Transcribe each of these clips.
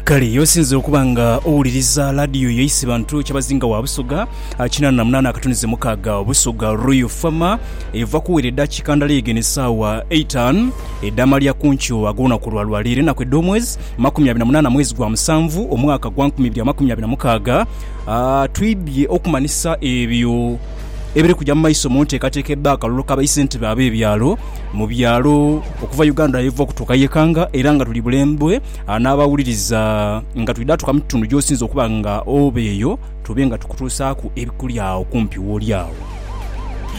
Kale ye osinze okuba nga owuliriza laadiyo yo Isibantu Kyabazinga wa Busoga ah, kinaana na munaana akatunize mukaaga Busoga Royal Fama eva kuwera eddakiika ndala eegene essaawa eitan edh'amalya ku nkyo ag'olunaku lwa lwaleero enaku edh'omwezi makumi abiri na munaana mwezi gwa musanvu omwaka gwa nkumi ibiri amakumi abiri na mukaaga Ah, twidhye okumanhisa ebyo ebiri kuja mu maiso mu nteekateeka ebba akalulu ka baisentebe ab'ebyalo mu byalo okuva Uganda yeva okutuuka ye Kanga era nga tuli bulembwe n'abawuliriza nga twidha tuuka mu kitundu gy'osinze okuba nga oba eyo tube nga tukutuusaaku ebikuli agho kumpi w'oli agho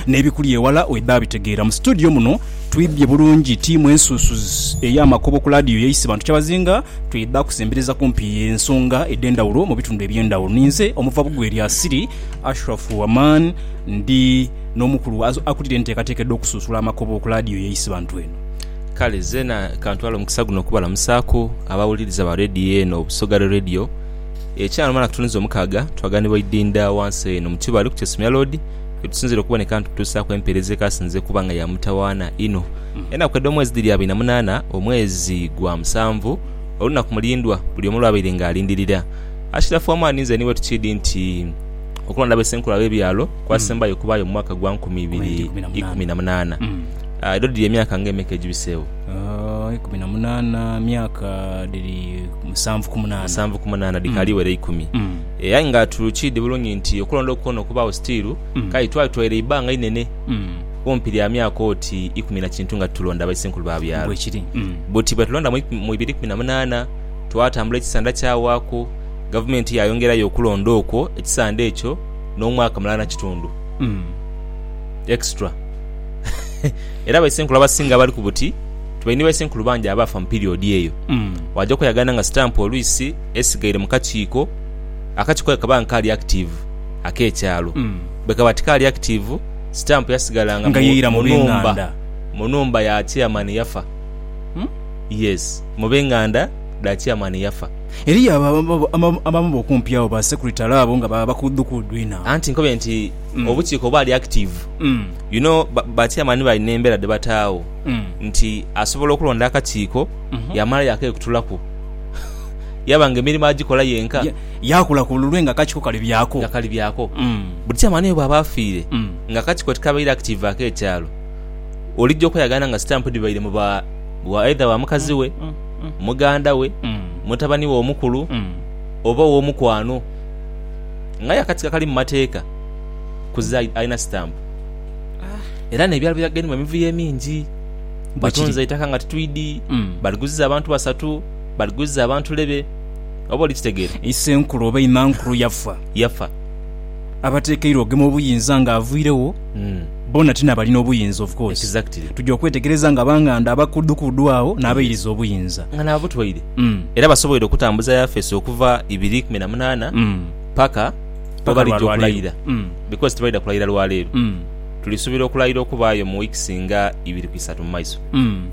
n'ebikuli ewala wedha bitegeera. Mu situdiyo muno twibbye bulungi ttiimu ensuusuzi ey'amakobo ku laadiyo yaiswe Bantu Kyabazinga twidha kusembereza kumpi ensonga edh'endhawulo mu bitundu eby'endhawulo. Ninze omuva Bugweri Asiri. Ashraf Waman ndi n'omukulu akulira enteekateeka edh'okusunsula amakobo ku laadiyo ye Isibantu eno. Kale zeena kantwale omukisa guno okubalamusaaku abawuliriza ba leediyo eno Busoga Radio. Ekyanga lumala kutunuza omukaaga twaganibwa idinda wansi eno mu Kibaale ku Kyesomya Loodi yetusinziira okuboneka nitutuusaaku empeereza ekaasinze okuba nga ya mutawaana inho. Enaku edh'omwezi dhiri abiri na munaana omwezi gwa musanvu olunaku mulindwa buli omu lw'abaire nga alindirira. Ashirafu Amani nze niwe tukiidhi nti okulonda abe Ssenkulu ab'ebyalo kwasembayo okubaayo mu mwaka gwa nkumi ibiri ikumi na munaana. Edho dhiri emyaka nga emeka egibiseegho? Ikumi na munaana myaka dhiri musanvu ku munaana. Musanvu ku munaana dhikaali wera ikumi. Eh, aye nga tukiidhi bulungi nti okulonda okwo kwona okubaagho sitiiru kale twatwaire eibanga inene kumpi lya myaka oti ikumi na kintu nga titulonda Baisenkulu ba byalo. Bwekiri. Buti bwetulonda mu ibiri ikumi na munaana, twatambula ekisanda kyawaaku, gavumenti yaayongerayo okulonda okwo ekisanda ekyo n'omwaka mulala na kitundu. Extra. Era baisenkulu abasinga abali ku buti tibaine ni baisenkulu bangi abaafa mu piriodi eyo. Waja okweyagana nga sitampu oluisi esigaire mu kakiiko, akakiiko ako kaba nga kaali akitiivu ak'ekyalo. Bwe kaba tikaali akitiivu, sitampu yasigalanga mu nhumba mu nhumba ya chairman eyafa. Yes, mu b'enganda dha Chairman yafa. Eriyo abo abamu b'okumpi agho ba Secretary abo nga ba bakuudukuudu inho. Anti nkobe nti obukiiko bwali active. You know ba Chairman bali n'embeera dhe bataagho nti asobola okulonda akakiiko yaamala yaakekutulaku yaba nga emirimo agikola yenka. Yaakula ku lulwe nga akakiiko kali byaako. Nga kali byaako. Buli Chairman oyo bw'aba afiire nga akakiiko tikabaire active ak'ekyalo. olija okweyagaana nga sitampu dhibaire mu ba aidha ba mukazi we, muganda we, mutabani we omukulu, oba ow'omukwano. Ng'aye akatiko akali mu mateeka kuza alina sitampu. Era n'ebyalo byagenda mu emivuyo emingi. Batunze eitaka nga titwidi, baliguziza abantu basatu, baliguziza abantu lebe. Oba oli kitegeera? Isenkulu oba imankulu yafa. Yafa. abatekeirwa okugema obuyinza nga avuiregho mm. bona ti nabalina obuyinza of course exactly. tuja okwetegereza nga banganda abakudukudu agho mm. nabairiza obuyinza nga nabutwaire mm. era basoboire okutambuza yafesi okuva ibiri kumi na munana mm. paka webalija okulayira mm. because tibaida kulayira lwaleero mm. tulisubira okulayira okubaayo mu weeks nga ibiri ku isatu mumaiso mm.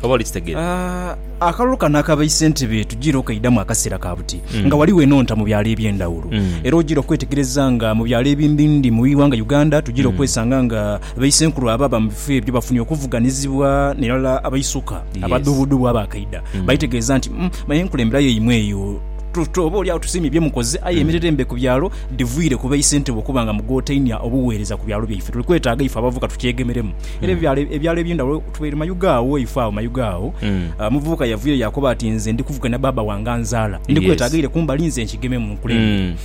oba olikitegera uh... Akalulu kano akabaise nti be tujiira okaidamu akaseera ka buti nga ghaligho enhonta mu byalo eby'endhawulo. Era ojiira okwetegereza nga mu byalo ebimbindhi mu ighanga Uganda tujiira okwesanga nga baisenkulu ababa mu bifo ebyo bafunye okuvuganizibwa n'irala abaisuka abadhubudhubu abaakaidha baitegeeza nti me enkulembera yaimwe eyo tuti oba olyagho tusiimye bye mukoze aye emirire embe ku byalo dhiviire ku baisentebe okuba nga mugotainia obuweereza ku byalo byaife. Tuli kwetaaga ife abavubuka tukyegemeremu era ebyalo eby'endhawulo Tweri mayuge agho, ife agho mayuge agho, omuvubuka yavuyo yaakoba ati, Nze ndi kuvuga na baaba wange anzaala. Ndi kweta aghaire kumbali nze nkigememu nkulembere.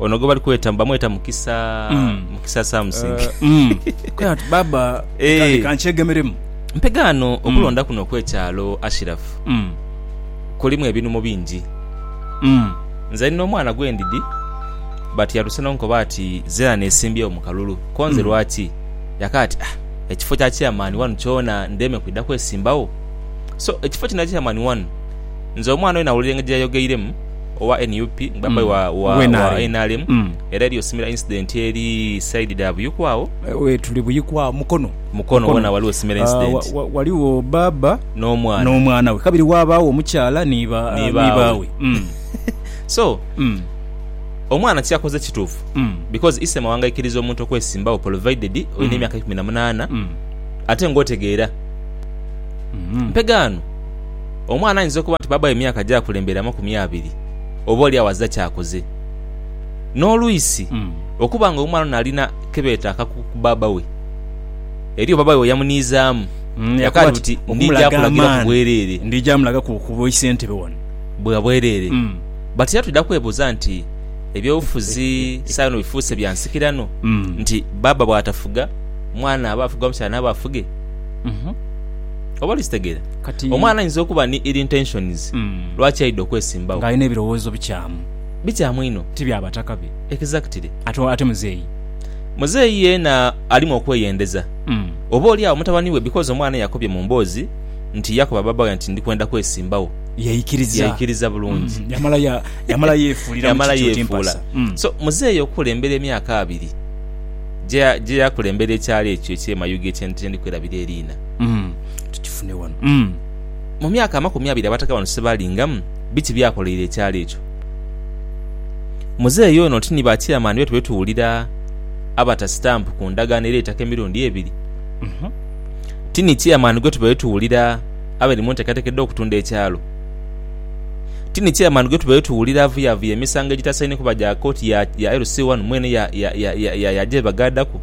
Ono gwe bali kweta, bamweta Mukisa, Mukisa Samsing. Kwe ati, Baaba, leka nkyegemeremu. Mpegaano, okulonda kuno okw'ekyalo Ashiraf kulimu ebinhumo bingi. Nze ndi n'omwana gwe ndidhi but yatuse n'onkoba ati, Zirani esimbyewo mu kalulu. Ko nze lwaki? Yaka ati, Ah, ekifo kya chairman wanu kyona ndeme kwidha kwesimbagho? So, ekifo kino ekya chairman wanu, nze omwana oyo nawulira engeri gyeyayogeiremu owa nup nga baba aye wa nrm era eriyo similar incident eri side dha Buyikwa agho. We're tuli Buyikwa agho, Mukono. Mukono wona waliwo similar incident. Waliwo baba n'omwana we kabiri waabagho omukyala ni baawe. So, Omwana kyakoze kituufu because ise mawanga aikiriza omuntu okwesimbawo provided olina emyaka ikumi na munaana ate nga otegeera. Mpegaano omwana ayinza okuba nti baabawe emyaka gyakulembera amakumi abiri oba oli awo azira kyakoze. N'oluisi okuba nga omwana ono alina kebeeta akakuku ku baaba we eriyo baaba we weyamuniizaamu yakaati buti ndija kulagira ku bwereere bwa bwereere. Batya twidha kwebuuza nti, Eby'obufuzi saino bifuuse bya nsikirano nti bbaabba bw'atafuga, mwana aba afuga oba mukyala naaba afuge? Oba oli kitegeera? Kati, omwana aidha okuba ni ill intentions lwaki aidha okwesimbawo. Ng'alina ebirowoozo bikyamu. Bikyamu inho. Ti bya bataka be. Exactly. Ate, ate muzeeyi? Muzeeyi yeena alimu okweyendeza. Oba oli agho mutabani we because omwana eyakobye mu mboozi nti yakoba bbaabba we nti ndi kwenda kwesimbawo. yaikiriza yaikiriza bulungi Mm, yamala ya- yamala yeefuuliramu yamala kiki oti yeefuula mpasa Mm. so muzeeyi okukulembera emyaka abiri gye- gye yakulembera ekyalo ekyo eky'e Mayuge kye kye ndi kwerabira eriina Mm. tukifune wano Mm. mu myaka amakumi abiri Abataka bano sebaalingamu biki byakoleire ekyalo ekyo muzeeyi ono oti ni ba chairman betwe betuwulira abata stamp ku ndagaano ereetaka emirundi ebiri Mhm. ti ni chairman gwetuba betuwulira abali mu nteekateeka edh'okutunda ekyalo. Ti ni chairman gwe tubaire tuwulira avuyavuya emisango egitasaine kuba gya kooti ya LC wano mwene yaaja yeebagaadaku?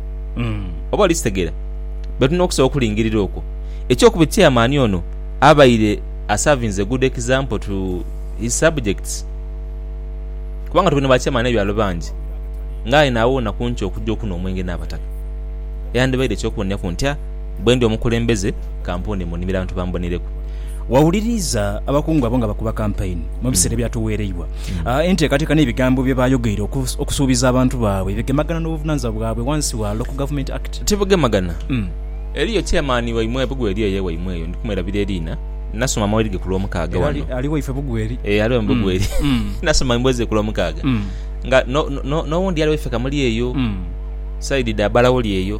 Oba oli kitegeera, be tulina okusobola okulingirira okwo. Ekyokubiri, chairman ono abaire asavinze good example to his subjects. Kubanga tuli na ba chairman b'ebyalo bangi nga aye naawona ku nti okujja okunhwa omwenge n'abataka. Yandibaire eky'okuboneraku ntya? Bwe ndi omukulembeze, ka mpuune mu nnimiro abantu bambonereku. Wawuliriza abakungu abo nga bakuba kampaini mu biseera ebyatuweereibwa. Enteekateeka n'ebigambo bye baayogeire okusuubiza abantu baabwe bigemagana n'obuvunaanyizibwa bwabwe wansi wa Local Government Act? Tibugemagana. Eriyo Chairman waimwe Bugweri eyo ewaimwe eyo, ndi kumwerabira eriina, nasoma amawulire ge ku Lwomukaaga wano. Era ali waife Bugweri? Ee, ali waimu Bugweri. Nasoma emboozi ze ku Lwomukaaga nga n'owundi ali waife Kamuli eyo, side dha Balawoli eyo.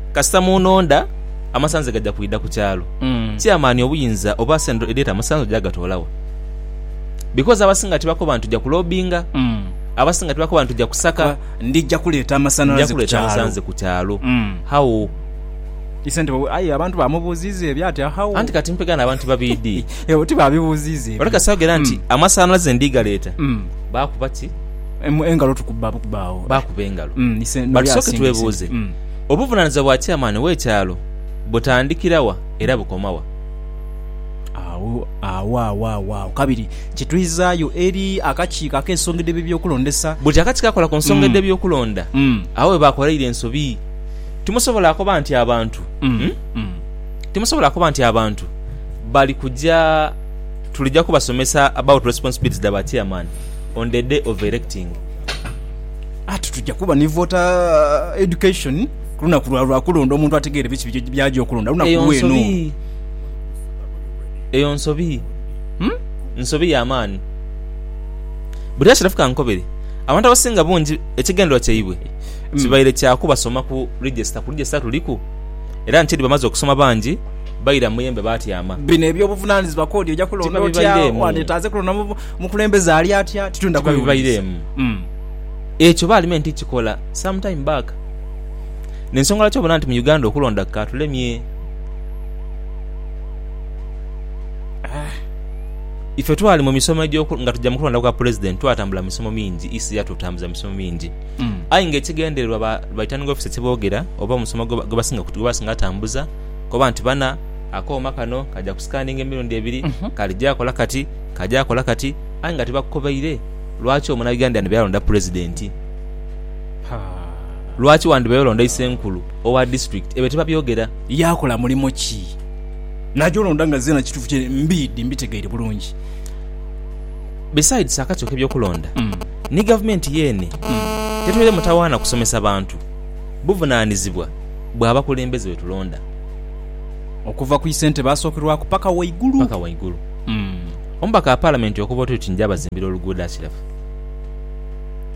Kasita mu nonda, amasanze gaja kwidha ku kyalo. Ti amaani, obuyinza, oba sente edhireeta amasanze oja gatoola wa? Because abasinga tibakoba nti tuja kulobinga. Abasinga tibakoba nti tuja kusaka. Ndija kuleeta amasanalaze ku kyalo. How? Aye abantu baamubuuziiza ebyo ati how? Anti kati mpega n'abantu babiri dii. Ebyo tibaabibuuziiza ebyo. Ole kasita ayogera nti amasanalaze ndi galeeta, baakuba ki? Engalo tukuba bukuba agho. Baakuba engalo. But tusooke twebuuze. Obuvunanizibwa bwa chairman we kyalo butandikira wa era bukoma wa? Awawawawawo kabiri kitwizaayo eri akakiiko ak'ensonga edh'ebyo eby'okulondesa. Buli akakiiko akakola ku nsonga edh'eby'okulonda agho we baakoleire ensobi. Timusobola koba nti abantu timusobola koba nti abantu bali kuja tulija kubasomesa about responsibilities dha ba chairman on the day of electing. Ati tuja kuba ni voter education kulunaku lwa lwakulonda omuntu ategeere biki biki byaja okulonda lunaku Eyo lweno. nsobi. Eyo nsobi. Hmm? Nsobi ya maani. Buli ashirafu kankobere. Abantu abasinga bungi ekigendererwa kyaibwe Hmm. kibaire kya kubasoma ku register. Ku register tuliku. Era nti edi bamaze okusoma bangi baira mu muyembe baatyama. Bino eby'obuvunanizibwa kodi oja kulonda otya? Tibabibaireemu. Wandetaaze kulonda mu bu- Mukulembeze ali atya titwendha kwewuunyisa. Ekyo Palimenti kikola some time back. N'ensonga lwaki obona nti mu Uganda okulonda kukatulemye. Ife twali mu misomo egyo nga tuja mu kulonda kwa Pulezidenti twatambula misomo mingi, EC yatutambuza mu misomo mingi. Aye nga ekigendererwa ba Returning Officer kye boogera oba omusomo gwe basinga gwe basinga tambuza koba nti bana akooma kano kaja ku scanninga emirundi ebiri, kali gyakola kati, Ka gyakola kati aye nga tibakukobaire lwaki omunabbi yandiyandibaire alonda pulezidenti? Lwaki wandibaire olonda isenkulu owa disitulikiti? Ebyo tibabyogera. Yaakola mulimo ki? Naja olonda nga zeena kituufu kye mbiidhi mbitegeire bulungi. Besides akakyoka eby'okulonda ni gavumenti yeene tetweire mutawaana kusomesa bantu buvunaanizibwa bwa bakulembeze be tulonda. Okuva ku isentebe asookerwaku paka waigulu. Omubaka wa Palamenti okuva oti oti nja bazimbira oluguudo Ashiraf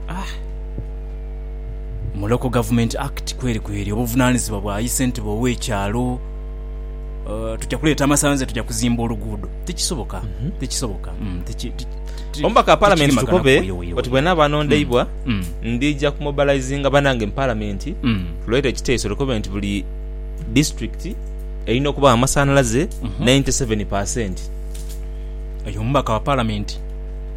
ah Mu Local Government Act kweri kweri obuvunanizibwa bwa yi sentebe owe kyalo Tuja kuleeta amasanze tuja kuzimba oluguudo tikisoboka tikisoboka Omubaka wa Palamenti Tukove oti bwenaba anondeibwa ndija ku mobilizinga banange mu Palamenti tuleete ekiteeso tukove nti buli Disitulikiti Erina okuba amasanhalaze 97 per cent. Oyo omubaka wa Palamenti.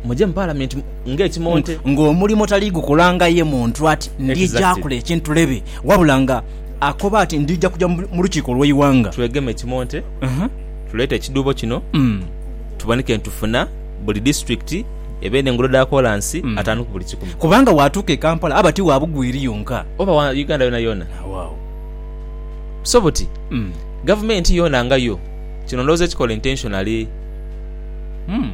Muje mu Palamenti ng'ekimonte. Ng'omulimo tali gukola nga ye muntu ati ndija Exactly. kola ekintu lebe, wabula nga akoba ati ndija kuja mu mu lukiiko lw'eighanga. Twegeme ekimonte, Aha. tuleete ekidhuubo kino Mm. tuboneke nti tufuna buli disiturikiti ebe n'enguudo dha koolansi ataanu ku buli kikumi. Kubanga bw'atuuka e Kampala aba ti wa Bugwiri yonka. Oba wa Uganda yoonayoona. Agho agho. So buti gavumenti yoona nga yo. Kino ndowooza ekikola intentionally. Umm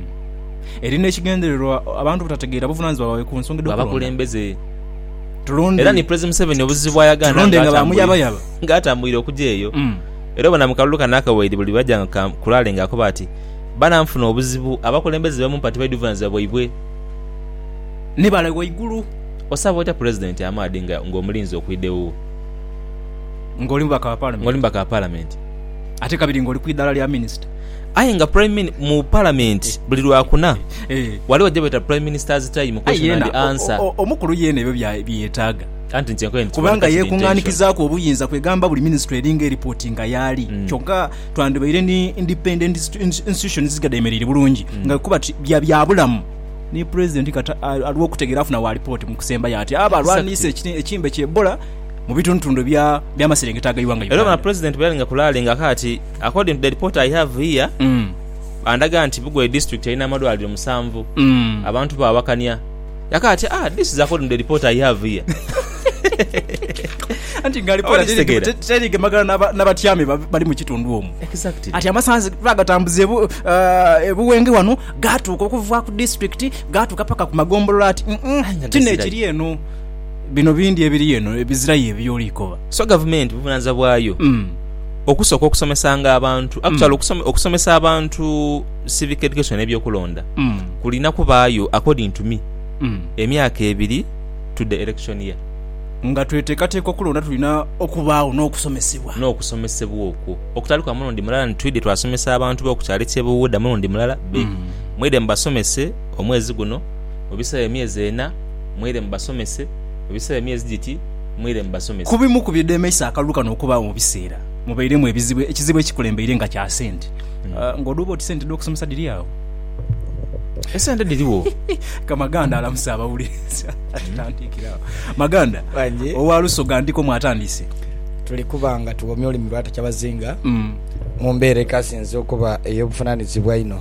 eri n'ekigendererwa abantu obutategeera buvunaanyizibwa bwaibwe ku nsonga edh'okulonda. Bw'abakulembeze. Tulonde. Era ni Pulezi Museveni obuzibu bw'ayagaana Tulonde nga ba muyabayaba. nga atambwire okuja eyo. Umm. Era obona mu kalulu kano akawaire buli lw'aja nga ka kulaale nga akoba ati, Bana nfuna obuzibu, abakulembeze be mumpa tibaidhi buvunaanyizibwa bwaibwe. Ni bale ghaigulu. Osaba otya Pulezidenti amaadhi nga ng'omulinze okwidha ewuwo? Ng'oli mubaka wa Palamenti. Ng'oli mubaka wa Palamenti. Ate kabiri ng'oli ku idhala lya Minisita. Aye nga Prime mu Palamenti buli Lwakuna ghaligho gye beeta Prime Minister's Time, Question and Answer. Omukulu yeena ebyo byeyetaaga. Anti nti enkoye nitugwa ni kasita intention. Kubanga yeekung'anikizaaku obuyinza kwegamba buli Minisitule eringa eripotinga y'ali. Kyokka twandibaire ni independent institution ezisinga dheemereire bulungi nga bwe kuba ti bya byabulamu. Ni Pulezidenti kati aliwo okutegeera afuna waalipooti mu kusembayo ati abo alwaniisa ekimbe kya Ebola. mu bitundutundu eby'amaserengeta aga Iwanga Uganda. Era ono Pulezidenti bweyalinga kulaalinga ka ati, According to the report I have here, bandaga nti Bugweri District erina amalwaliro musanvu. Abantu baawakania. Yaka ati, Ah, this is according to the report I have here. Anti nga alipoota terigemagana n'abatyami bali mu kitundu omwo. Exactly. Ati amasanzi bagatambuza ebu, uh, ebuwenge wano gaatuuka okuva ku disitulikiti gaatuuka paka ku magombolola ati, mm, mm, kino ekiri eno. bino bindi ebiri eno ebizirayo ebyoli koba. So gavumenti buvunanizibwa bwayo okusoka okusomesanga abantu actually okusomesa abantu civic education ebyokulonda kulina kubayo according to me emyaka ebiri to the election year. Nga twetekateka okulonda tulina okubagho nokusomesebwa. Nokusomesebwa okwo okutali kwa mulundi mulala nti twidhe twasomesa abantu bo kukyalo ekye Buwuda mulundi mulala be mwidhe mubasomese omwezi guno mubisewo emyezi ena. mwire mubasomese, mu biseera emyezi giti mwire mubasomese. Ku bimu ku bidhemeisa akalulu kano okubaagho mu biseera mubairemu ebizibu, ekizibu ekikulembeire nga kya sente. Ng'odha oba oti sente dh'okusomesa dhiri agho? Esente dhirigho. Ka Maganda alamuse abawuliriza. Tutandiikire agho. Maganda, owa Lusoga ndiko mwatandise. Tuli kuba nga tughomya olulimi lwa Takyabazinga mu mbeera ekasinze okuba ey'obuvunaanizibwa einho.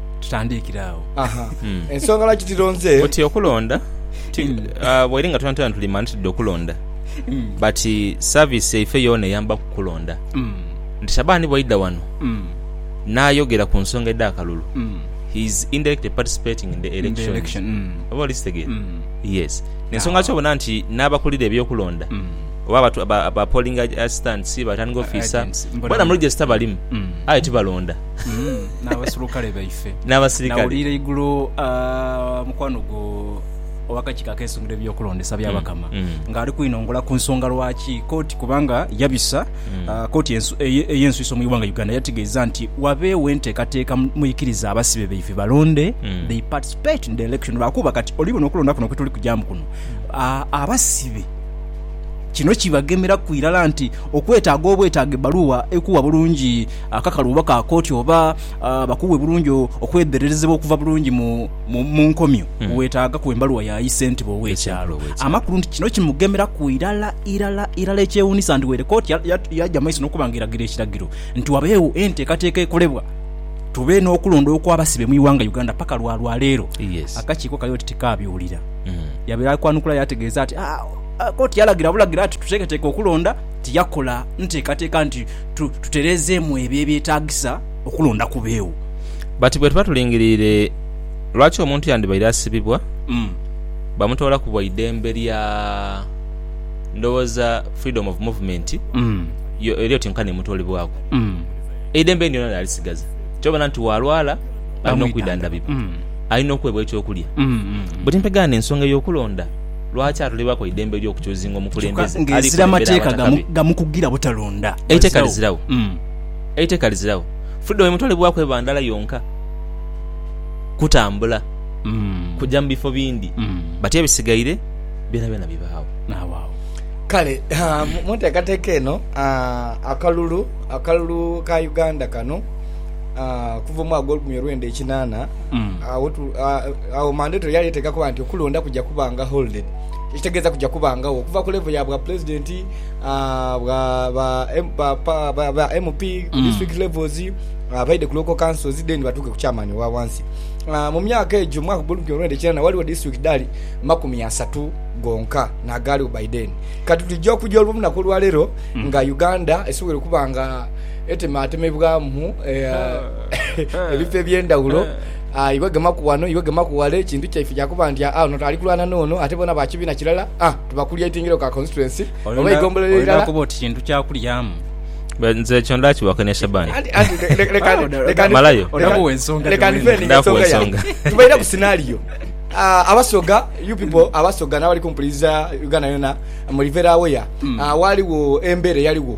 tutandiikire agho. Aha. Mm. Ensonga lwaki tilonze. Buti okulonda ti Mm. ah, bweri nga twena twena tuli mani tudde okulonda Mm. but service yaife yoona eyamba ku kulonda Mm. nti Shaban bwaidha wano Mm. n'ayogera ku nsonga edh'akalulu Mm. he is indirectly participating in the In the elections. election. Mm. Oba oli kitegeera? Mm. Yes. Ensonga lwaki obona nti n'abakulira eby'okulonda Mm. oba abatu- aba- aba polling ag- assistants, returning officer, Agents. Mbona- bona mu register balimu Mm. aye tibalonda. mm, n'abaserukale baife n'abasirikale nawulira igulo ah, mukwano gwo ow'akakiiko ak'ensonga eby'okulondesa by'abakama mm. ng'ali kwinongola ku nsonga lwaki kooti kubanga yabisa mm. ah, kooti ensu- eye- ey'ensuiso mu iwanga uganda yategeeza nti wabeewo enteekateeka mu- muikiriza abasibe baife balonde Mm. they participate in the election lwakuba kati oli buno okulonda kuno kwetuli kujamu kuno ah, abasibe kino kibagemeraku irala nti okwetaaga obwetaaga ebbaluwa ekuwa bulungi Akakalu oba ka kooti oba bakuwe bulungi okwedhererezebwa okuva bulungi mu nkomyo, weetaaga ku embaluwa ya ayi ssentebe ow'ekyalo amakulu nti kino kimugemeraku irala irala irala. Ekyewuunisa nti weere kooti yaja mu maiso n'okuba nga eragira ekiragiro nti wabeewo enteekateeka ekolebwa tube n'okulonda okw'abasibe mu ighanga Uganda paka lwa lwa leero akakiiko kali oti tikaabiwulira. Yabeera ali kwanukula yaategeeza nti kooti yalagira bulagira nti tuteeketeeke okulonda tiyakola nteekateeka nti tutereezeemu ebyo ebyetaagisa okulonda ku beewo. But bwe tuba tulingiriire, lwaki omuntu yandibaire asibibwa bamutoola ku bwa idembe lya ndowooza freedom of movement yo eri oti nkani emutoolebwaku? Eidembe lyona lyalisigaza nti babona nti waalwala alina okwidhandhabibwa, alina okuweebwa eky'okulya. But mpegaane ensonga ey'okulonda. Lwaki atulibaaku eidembe ery'okuchuzinga omukulembeze ali kulembera Abataka be? Eiteka liziragho. Eiteka liziragho. Freedom emutwalibwaku eba ndala yonka, kutambula, kuja mu bifo bindi, but ebisigaire byonabyona bibaagho. Kale mu nteekateeka eno akalulu akalulu ka Uganda kano okuva omwaka ogw'olukumi olwenda ekinaana Agho Mandoto yali eteeka kuba nti okulonda kuja kuba nga holded, ekitegeeza kuja kubangagho okuva ku level ya bwa pulezidenti, ba MP ku district levels, abaidhe ku local councils then batuuke ku chairman owa wansi. Mu myaka egyo, mwaka gwa olukumi lwenda kinaana, waliwo district dhali makumi asatu gonka n'agaaliwo by then. Kati tuja okuja olunaku olwaleero nga Uganda esobwoire okuba nga etemaatemebwamu. ebifo eby'endhaghulo, iwe gemaku ghano, iwe gemaku ghale, kintu kyaife kya kuba nti aa ono ali kulwana n'ono ate bona ba kibiina kilala, aa tuba kulya itingiro ka constituency oba eigombolola eirala. Olina kuba oti kintu kya kulyamu. Nze ekyo ndaakibaako ne Shaban. Malayo. Leka ndifeendinge ensonga yange. Tubaire ku scenario. Abasoga, you people Abasoga n'abali kumpuliriza Uganda yona, muli very aware, waaliwo embeera eyaligho.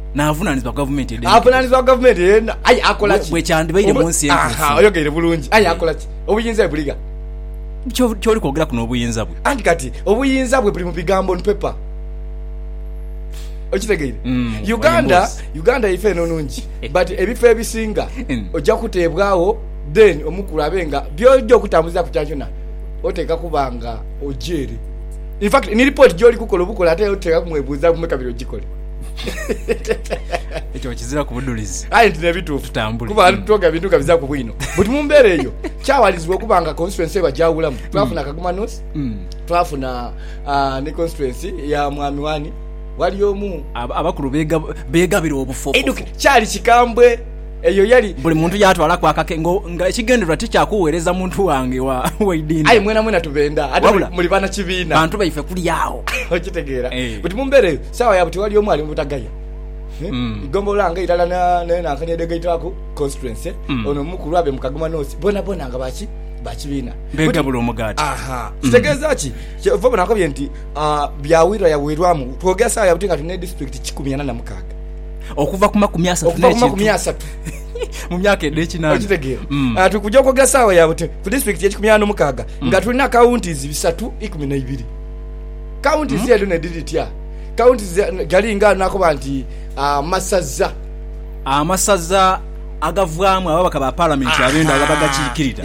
n'avunaanizibwa gavumenti edhenekedhe. Avunaanizibwa gavumenti eena, aye akola ki? Bwekyandibaire mu nsi entuufu. Oyogeire bulungi. Aye akola ki? Obuyinza bwe buligha. Ky'oli kwogeraku n'obuyinza bwe. Anti kati obuyinza bwe buli mu bigambo on paper. Okitegeire? Uganda, Uganda yaife eno nungi but ebifo ebisinga oja kuteebwagho then omukulu abe nga by'oja okutambulizaaku kyonakyona oteekwa kuba nga oja ere. In fact ni report gy'oli kukola obukola ate oteekwa kumwebuuzaaku me kabiri ogikole. ekyo kizira ku budhulizi aye nti nebituufu Tutambule. kuba ali tutoga bintu nga bizaku bwino but mu mbeera eyo kyawalizibwa okuba nga constituency eba gyawulamu twafuna kagoma north Mm. twafuna ah, ni constituency ya mwami wani wali omu Ab- abakulu bega- begabira obufofu eduke kyali kikambwe eyo yali buli muntu yatwalaku akake ngo- nga ekigendererwa ti kya kuweereza muntu wange wa aye waidinda mwena mwena tubenda ate Wabula. muli bana kibiina bantu baife kuli awo okitegeera Eh. but mu mbeera eyo Sawa ya buti wali omu ali mu butagaya igombolola nga irala ne Nankani edhegaitwaku constituency ono omu ku lwabe mu Kagoma North bonabona nga ba ki ba kibiina Begabula omugaati. aha kitegeeza ki kyova obona nkobye nti ah, byawirwa yawirwamu twogera sawa ya buti nga tuli ne district kikumi ana na mukaaga Okuva ku makumi asatu okuva ku makumi n'ekintu asatu mu myaka edh'ekinaana. okitegeera Mm. Ah, tuli kuja okwogera sawa ya buti ku district ekikumi ana na mukaaga nga tulina counties bisatu ikumi na ibiri Kaunti zeedu ne dhiri dhitya? Kaunti gali nga nakoba nti amasaza. Amasaza agavaamu ababaka ba Palamenti ab'endaghulo abagakiikirira,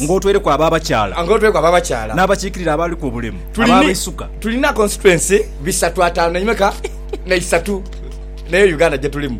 ng'otweireku ab'abakyala n'abakiikirira abaliku obulemu ab'abaisuka. Tulina konsituensi bisatu, ataanu, naimeka? N'eisatu. N'eyo Uganda gye tulimu.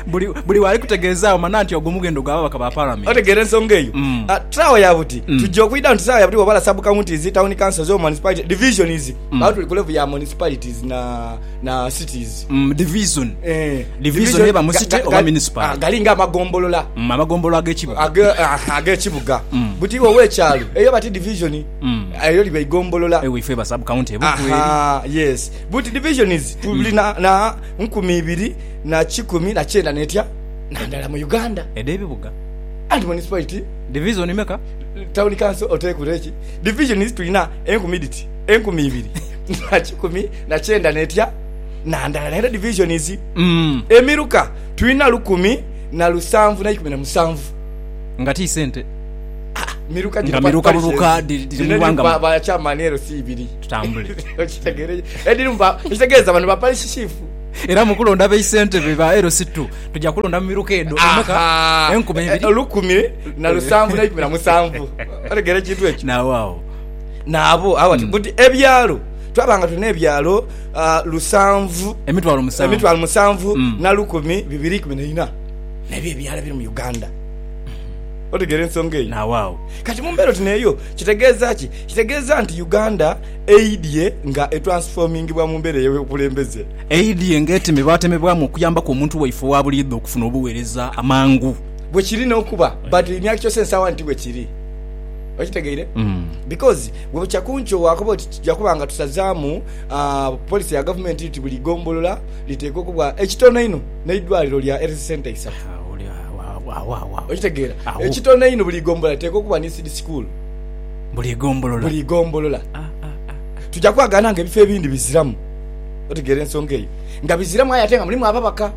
Buli, buli waali kutegeezaagho mana nti ogwo mughendo gwa babaka ba Palamenti. Otegeera ensonga eyo? Mm. Ah, Saawa ya buti Mm. tujja okwidha nti saawa ya buti bwebala sub counties, town councils, or municipality divisions baba tuli ku level ya municipalities na na cities. Mm, division. Eh, Division eba mu ga- city ga- oba ga- municipal. ah, gali nga amagombolola Mm, amagombolo ag'ekibuga. age- ah, ag'ekibuga Mm. buti iwe ow'ekyalo eyo bati division Mm. eyo liba igombolola Ewe ife ba sub county ebuku eri. Aha, yes buti divisions tuli na, na nkumi ibiri na kikumi na kyenda n'etya na ndala mu Uganda. Edh'ebibuga. And municipality. Divizoni meka? Tawuni kanso oteekure eki? Divizoni tulina enkumi dhiti? Enkumi ibiri na kikumi na kyenda n'etya na ndala. Naye era divizonizi. Emiruka tulina lukumi na lusanvu n'eikumi na musanvu. Nga ti sente. Miruka dhino parishes. Nga miruka buruka dhiri mu ighanga muno. Ba chairman LC ibiri. Tutambule. Okitegeera? Edhirimu ba, ekitegeeza bano ba parish chief. Era mu kulonda baisentebe ba LC2, tuja kulonda mu miruka edho emeka? Ahaa. Enkumi Eh, ibiri? Olukumi na lusanvu n'eikumi na musanvu. Otegeera ekintu ekyo? Naagho agho. Naabo agho ati, buti ebyalo, twaba nga tulina ebyalo ah, lusanvu, Emitwalo musanvu. emitwalo musanvu Mm. na lukumi bibiri ikumi na ina. N'ebyo ebyalo ebiri mu Uganda. Otegeera ensonga eyo? Naagho agho. Kati mu mbeera oti n'eyo, kitegeeza ki? Kitegeeza nti Uganda Eidhie nga etransfomingibwa mu mbeera ey'obukulembeze. Eidhie nga etemebwatemebwamu okuyambaku omuntu waife owa buliidho okufuna obuweereza amangu. Bwe kiri n'okuba, but in actual sense awa nti bwe kiri. Okitegeire? Because bwe bukya ku nkyo waakoba oti tuja kuba nga tusazaamu policy ya gavumenti nti buli gombolola liteekwa okubwa ekitono einho n'eidwaliro lya health centre isatu. Okitegeera? Ekitono einho buli gombolola liteekwa okubwa ni seed school. buli ghombolola. Tuja kwagaana nga ebifo ebindi biziramu, otegeera ensonga eyo, nga biziramu aye ate nga mulimu ababaka.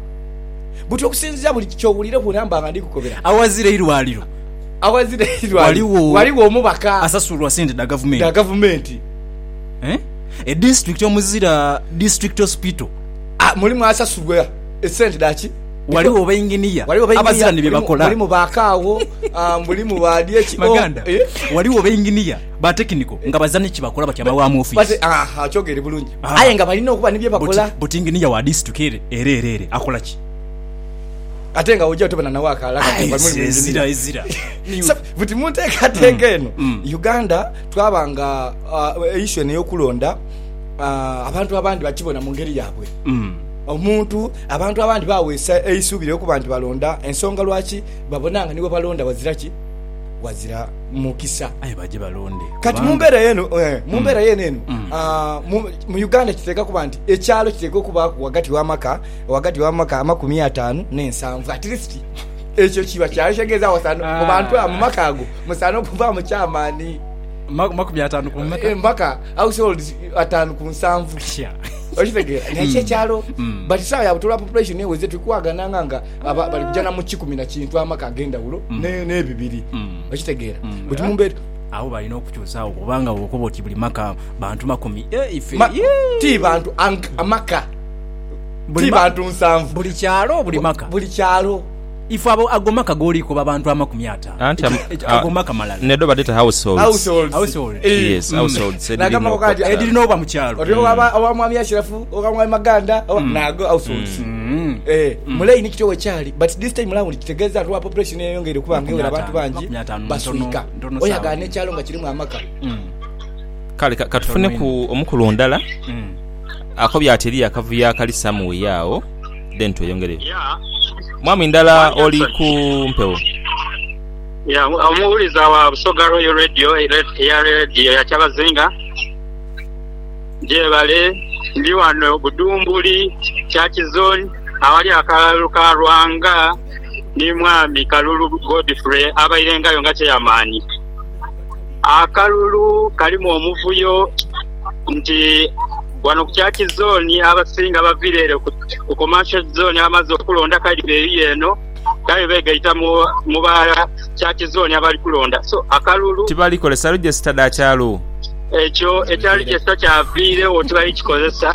Buti okusinziira buli kyowulira ku namba nga ndhikukobera. Awazira eirwaliro ghaligho omubaka asasulwa sente dha gavumenti. Edisiturikiti omuzira District Hospital mulimu asasulwa esente dha ki? Ghaligho bainginiya abazira ni bye bakola. Mulimu ba kaagho, ah, mulimu ba dyeki. Oh, Maganda, eh? ghaligho bainginiya ba tekiniko nga bazira ni ki bakola batyama wa mu But, ofiisi. aha, okyogere bulungi. Ah. Aye nga balina okuba ni bye But, bakola. but inginiya wa disituka ere, ere, ere, ere akola ki? Ate nga oja otobana nawe akaala kati nga muli mu Ezira, ezira, engineer. ezira. Ni- So, buti mu nteekateeka eno mm. uganda twaba nga ah, issue eno eyokulonda ah, abantu abandi bakibona mu ngeri yaabwe Mm. Omuntu abantu abandi baaweesa eisuubi lya okuba nti balonda ensonga lwaki babona nga ni we balonda wazira ki? Wazira mukisa. Aye baje balonde kubanga... Kati mu mbeera y'eno, mu mbeera y'eno eno, mu Uganda kiteekwa kuba nti ekyalo kiteekwa okubaaku ghagati w'amaka, ghagati w'amaka amakumi ataanu n'ensanvu at least. Ekyo kiba kyalo ekitegeeza wasaana, mu bantu abo, mu maka ago musaana okubaamu chairman, makumi ataanu ku meka? Mpaka households ataanu ku nsanvu. okitegeera naye kyo ekyalo but saawa ya butola population eweze tuli kuwagananga nga aba- bali kujana mu kikumi na kintu amaka ag'endawulo ne- n'ebibiri okitegeera but mu mbeera awo balina okukyusaawo kubanga bwokuba oti buli maka bantu makumi eh, ife ma- yee. ti bantu ang- amaka Buli ti ma- bantu nsanvu buli kyalo buli maka buli kyalo Ago maka goliku ba bantu amakumi ataanu. Anti ago maka malala. Nedho badheta households. Yes households edhiri n'oba mu kyalo. Oti owa mwami Ashirafu, owa mwami Maganda nago households. Mu line kityo bwekyali but this time round kitegeeza lwa population eyeyongeire okuba nga ewera abantu bangi baswika oyagala n'ekyalo nga kirimu amaka. Kale katufuneku omukulu ndala akobye ati eriyo akavuyo akali somewhere agho. then tweyongereyo. Mwami ndala oli ku mpewo. Ya omuwuliza wa Busoga Royal Radio eya Radio ya Kyabazinga gyebale ndi wano Budhumbuli Church Zone awali akalalu ka Lwanga ni mwami Kalulu Godfrey abairengayo nga chairman. Akalulu kalimu omuvuyo nti Ghano ku Church Zone abasinga abavira ere ku Commercial Zone abamaze okulonda kale beriyo eno kale begaita mu ba Church Zone abali kulonda so akalulu. Tibali kozesa register dha kyalo. Ekyo ekya register kyaviiregho tibali kikozesa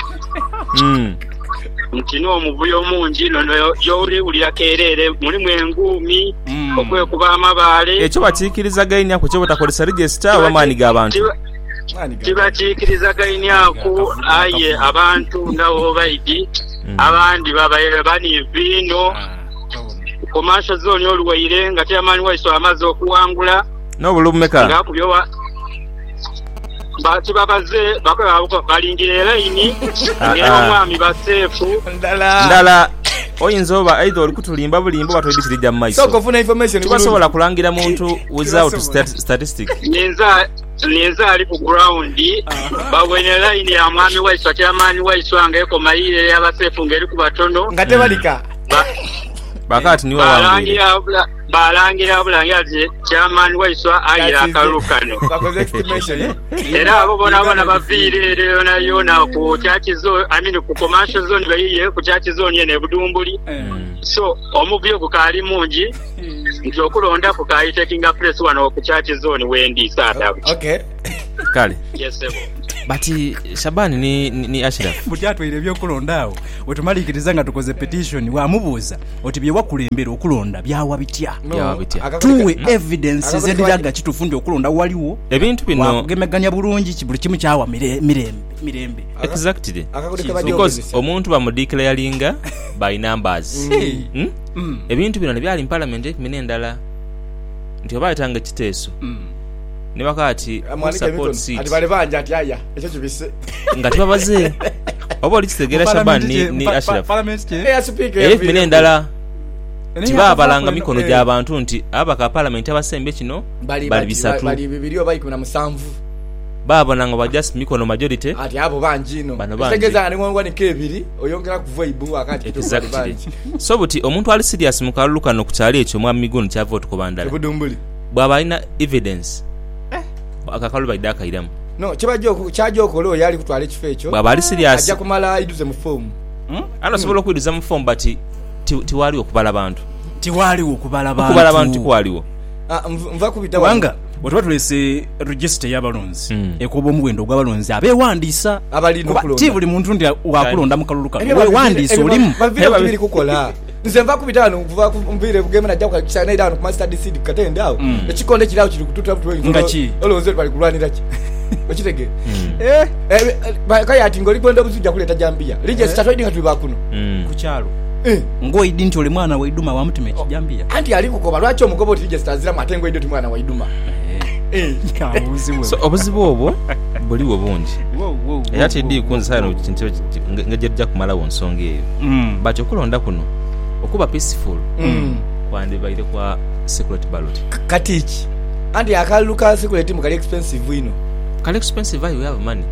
nti n'omuvuyo mungi inho gyoli wulira kerere mulimu enguumi, okwekuba amabaale. Ekyo bakiikiriza gainia ku kyo butakozesa register oba maani ga bantu. tibakiikirizagainiaku, aye abantu nga Obaidi abandi babaire baniivu inho ku maaso zooni oluwaire nga Chairman waiswe amaze okuwangula ng'akubye wa. Bati babaze bakobe balindire line ng'era omwami baseefu. Ndala. Oyinza oba either oli kutulimba bulimba oba toidhi kiri gya mu maiso. Tibasobola kulangira muntu without statistic. Ninza. Ninze ali ku ground. Baboine line ya mwami waiswa chairman waiswa nga ekoma yiyo eya basefu nga eriku batono. Nga tebalika. Balangira bulangira nti chairman waiswa aye akalulu kano. Era abo bonabona baviire ere yonayona ku church zone, I mean ku commercial zone bayiye ku church zone eno e Budumbuli. So omuvuyo gukaali mungi. nti okulondaku ka I taking place wano ku church zone wendi saadabu ki. Okay. Kale. Yes sebo. But Shaban ni ni Ashiraf. Buti atwaire ebyokulonda agho wetumalikiriza nga tukoze petition wamubuuza oti byewakulembera okulonda byawa bitya? Byawa bitya? Tuwe evidence edhiraga kitufu nti okulonda waligho, wakugemegania bulungi ki buli kimu kyawa mirembe. mirembe. Exactly because omuntu bamudeclaringa by numbers ebintu bino nibyali mu parliament enkumi nendala nti oba ayetanga ekiteeso nibakoba nti who supports it nga tibabaze oba oli kitegera Shaban ni Ashraf era enkumi nendala nti babalanga mikono gyabantu nti ababaka ba parliament abasembe kino bali bisatu. baabona nga baja mikono majority bano bangi Exactly so buti omuntu ali serious mu kalulu kano ku kyalo ekyo mwami Miguuni kyava otukoba ndala bwaba alina evidence ako akalulu baidha akairamu bwaba ali serious Anti osobola okwiduza mu form but tiwaaliwo kubala bantu kubala bantu tikwaliwo. Bwe tuba tuleese rejisita ey'abalonzi, ekoba omuwendo ogw'abalonzi abeewandiisa Abalina kuba ti okulonda. buli muntu nti waakulonda mu kalulu kano. Ebyo bavi- Weewandiise ebyo olimu. ba- baviire ku biri kukola. Nze nva kubita ghano nva ku- nviire e Bugema naja ku Kisa naidha ghano ku Mustard Seed ku katende agho. Ekikondo kiri agho kiri kututa buti oyinza Nga olwo- ki? olowooza oti bali kulwanira ki? Okitegeera? Eh, Eh, eh, ba- kale ati ng'oli kwenda obuzi oja kuleeta jambiya. Linya esita toidhi nga tuli ba kuno. Ku kyalo. Ng'oidhi nti oli mwana wa idhuma wa mutima ekijambiya. Anti ali kukoba lwaki omukoba oti Jesita aziramu ate ng'oidhi oti mwana wa idhuma. So obuzibu obwo buligho bungi era tidhi kunzisa ghano ngeri gye tuja kumalagho nsonga eyo. But okulonda kuno okuba peaceful kwandibaire kwa secret ballot. Kati ki? Anti akalulu ka secret mbu kali expensive inho. Kali expensive aye we have money.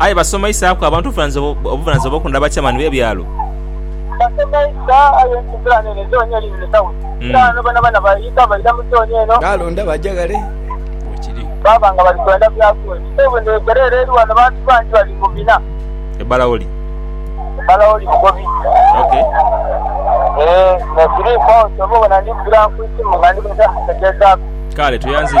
Aye basomaisaaku abantu obuvunaanyizibwa bw'okunda abakyamani b'ebyalo. Baalonda baja ghale we kiri. E Balaoli. Kale, tweyanziza.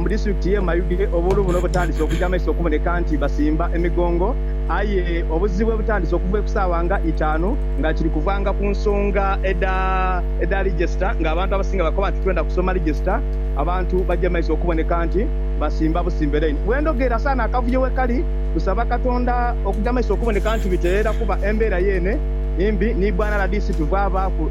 mu disitulikiti ye Mayuge obuwuulu buno butandise okuja mumaiso okuboneka nti basimba emigongo aye obuzibu bwebutandise okuva ekusaawa nga itaanu nga kiri kuvanga ku nsonga edha Register nga abantu abasinga bakoba nti twenda kusoma Register abantu baje mumaiso okuboneka nti basimba busimbe line wendogeera saana akavuyo wekali tusaba katonda okuja mumaiso okuboneka nti bitereera kuba embera yeene mbi ni bwana rdc tuvaavaaku